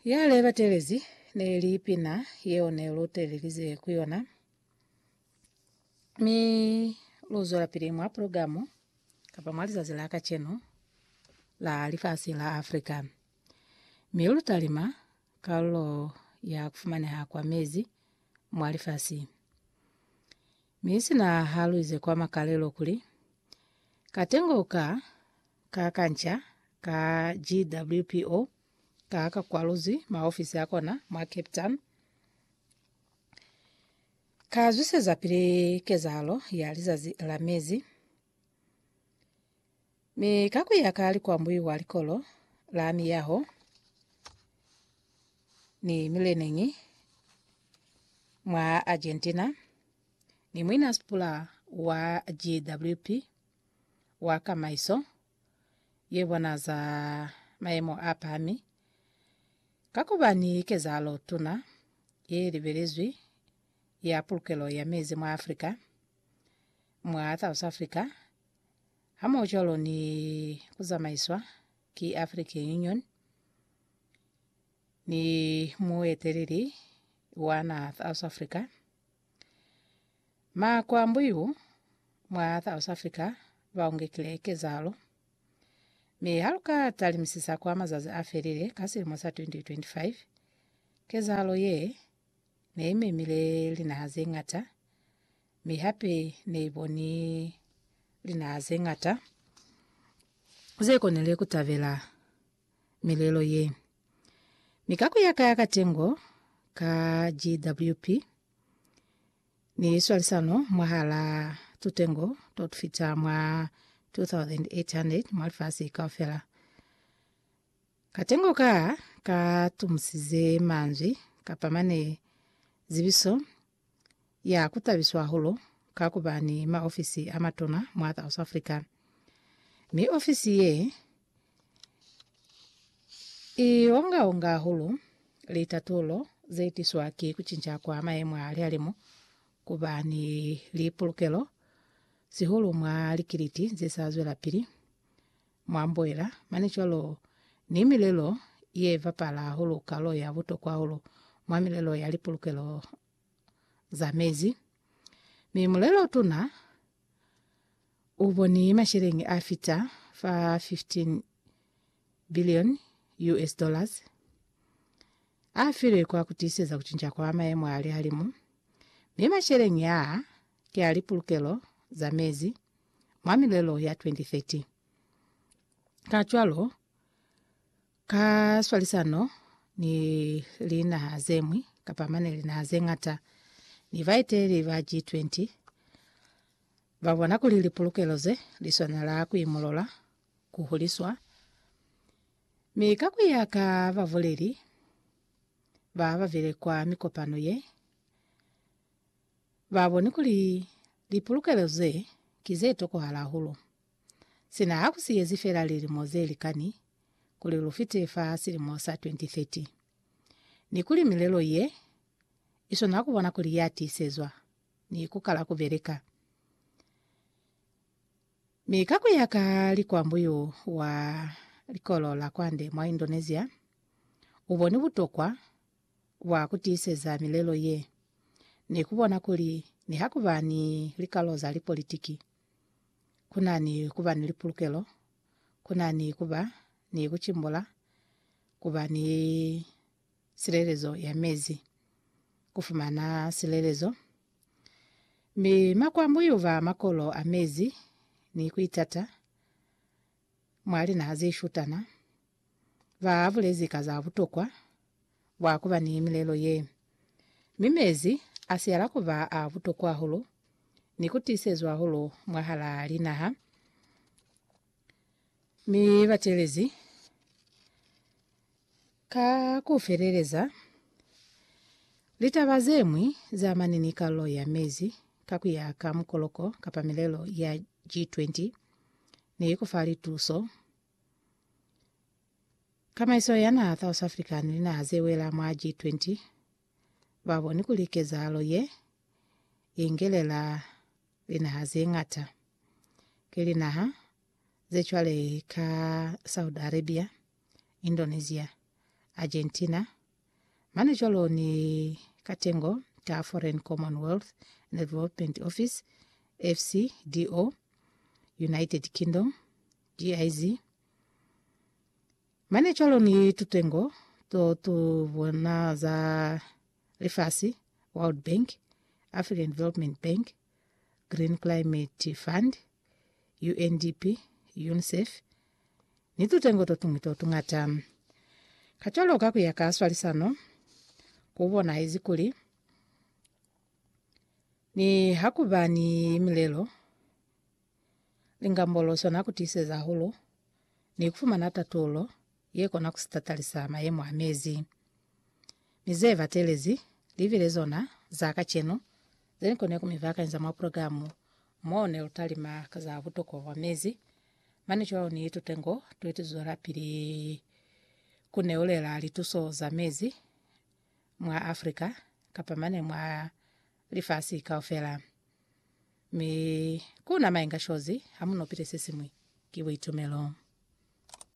Ya le batelezi ne li pina yeo ne lu telelize ku yona. Mi lu zwela pili mwa progamu kapa mwa lizazi la kacenu la lifasi la Afrika. Mi lu talima kalulo ya kufumaneha kwa mezi mwa lifasi. Mi sina haluize kwa makalelo kuli, Katengo ka ka kanca ka GWPO ka ka kwaluzwi maofisi a kona mwa Cape Town, ka zwisezapili kezahalo ya lizazi la mezi. Mi ka ku ya ka likwambuyu kwa likolo la miyaho ni mileneñi mwa Argentina, ni muina sipula wa GWP wa kamaiso ye bona za mayemo a pahami, ka ku ba ni kezahalo tuna ye libelezwi ya pulukelo ya mezi mwa Afrika, mwa South Africa, hamohucwalo ni ku zamaiswa ki African Union ni mueteleli wa naha South Africa. Makwambuyu mwa South Africa baungekile kezalo, mi haluka talimisisa kwa mazazi a felile ka silimo sa 2025, kezalo ye neimemile linaha zeñata mi hape ne i boni linaha ze ñata ze konile ku tabela milelo ye. Mi ka ku ya ka katengo ka GWP ni swalisano mwahal'a tutengo to tu fita mwa 2,800 mwa lifasi kaufela, katengo ka ka tumusize manzwi kapa mane zibiso ya ku tabiswa hahulu ka ku ba ni maofisi a matuna mwa South Africa, mi ofisi ye i onga-onga hahulu litatulo ze tiswa ki ku cinca kwa mayemo a lihalimu, ku ba ni lipulukelo, sihulu mwa likiliti ze sa zwelapili. mwa mboela, mane cwalo ni milelo ye bapala hahulu kalo ya butokwa hahulu mwa milelo ya lipulukelo za mezi. Mi mulelo-tuna u boni masheleñi a fita fa 15 bilioni US dollars a filwe kwa ku tiiseza ku cinca kwa mayemo a lihalimu, mi masheleñi aa ki a lipulukelo za mezi. mwa milelo ya 2030. Kacwalo, ka swalisano ni linaha zeñwi, kapa mane linaha zeñata, ni baeteleli ba G20, ba bona kuli lipulukelo ze li swanela kuimulola, ku huliswa, mi ka kuya ka babuleli ba babile kwa mikopano ye, Ba boni kuli lipulukelo ze ki ze tokohala hahulu. Sina ha ku siyezi fela lilimo ze likani kuli lu fite fa silimo sa 2030, ni kuli milelo ye i swanela ku bona kuli ya tiisezwa ni ku kala ku beleka. Mi ka ku ya ka likwambuyu wa likolo la kwande mwa Indonesia u boni butokwa bwa ku tiiseza milelo ye ni ku bona kuli niha ku ba ni likalo za lipolitiki, ku na ni ku ba ni lipulukelo, ku na ni ku ba ni ku cimbula, ku ba ni silelezo ya mezi, ku fumana silelezo, mi makwambu y'u ba makolo a mezi, ni ku itata. mwa linaha ze shutana ba bulezi ka za butokwa bwa ku ba ni milelo ye. Mi mezi a siala ku ba a butokwa hahulu ni ku tiisezwa hahulu mwahalaa linaha, mi bateelezi Ka ku feleleza, litaba ze ñwi za amane ni kalo ya mezi ka ku ya ka mukoloko kapa milelo ya G20 ne i ku fa lituso. Kamaiso ya naha South Africa ni linaha ze wela mwa G20 ba boni kuli kezahalo ye i ngelela linaha ze ñata. Ki linaha ze cwale ka Saudi Arabia, Indonesia, Argentina, mane cwalo ni katengo ta Foreign Commonwealth and Development Office, FCDO, United Kingdom, GIZ, mane cwalo ni tutengo to tu bona za lifasi, World Bank, African Development Bank, Green Climate Fund, UNDP, UNICEF, ni tutengo totuñwi totuñata. Kacwalo ka kuya ka swalisano, kubonahezi kuli nihakuba ni milelo, lingambolo sona kutiiseza hahulu ni kufumana tatulo ye kona ku sitatalisa mayemo a mezi. Mi ze batelezi li bile zona za kacenu ze ni kone ku mi bakanyiza mwa purogilamu mo ne lu talima ka za butokwa bwa mezi, mane cwalo ni tutengo tuli tu zwelapili ku neulela lituso za mezi mwa Africa kapa mane mwa lifasi kaufela. Mi ku na mainga shozi ha mu nopile se siñwi, ki buitumelo.